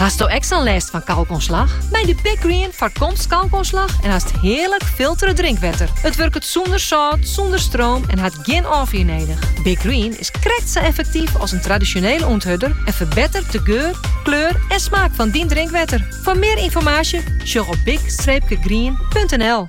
Hasto ek sa'n lêst fan kalkoanslach? Mei de Big Green foarkomst kalkoanslach en hast hearlik filtere drinkwetter. It wurket sûnder sâlt, sûnder stroom en hat gjin ôffier nedich. Big Green is krekt sa effektyf as in tradisjonele ûnthurder en ferbettert de geur, kleur en smaak fan dyn drinkwetter. Foar mear ynformaasje sjoch op big-green.nl.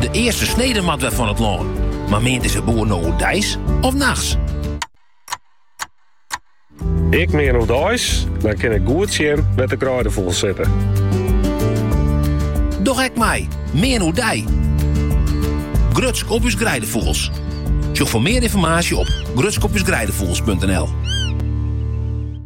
De earste snede moat wer fan it lân. Mar meant dizze boer no oerdeis of nachts? Ik mean oerdeis, dan kin ik goed sjen wêr't de greidefûgels sitte. Doch ek mei, mean oerdei. Grutsk op ús greidefûgels. Sjoch foar mear ynformaasje op grutskopusgreidefugels.nl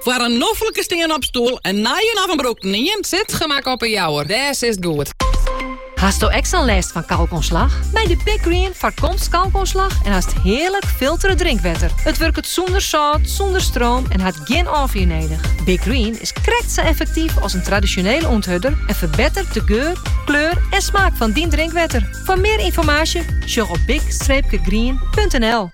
Foar in noflike stean-op stoel, in nijen of in brûkten ien, Zitgemak op 'e Jouwer, dêr sitst goed. Hasto ek sa'n lêst fan kalkoanslach? Mei de Big Green foarkomst kalkoanslach en hast hearlik filtere drinkwetter. It wurket sûnder sâlt, sûnder stroom en hat gjin ôffier nedich. Big Green is krekt sa effektyf as in tradisjonele ûnthurder en ferbettert de geur, kleur en smaak fan dyn drinkwetter. Foar mear ynformaasje sjoch op big-green.nl.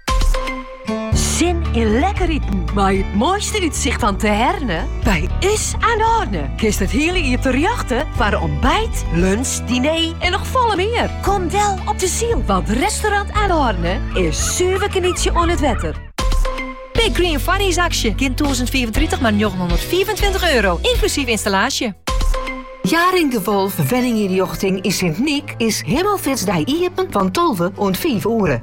Sin yn lekker iten mei it moaiste útsicht fan Terherne? By ús Aan de Horne kinst it hiele jier terjochte foar ontbijt, lunch, diner en noch folle mear. Kom del op De Syl, want restaurant Aan de Horne is suver genietsje oan it wetter. Big Green foarjiersaksje. Gjin 2034 mar 925 euro, ynklusyf ynstallaasje. Jaring de Wolff Wenningynrjochting yn Sint Nyk is Himelfeartsdei iepen van 12 oant 5 oere.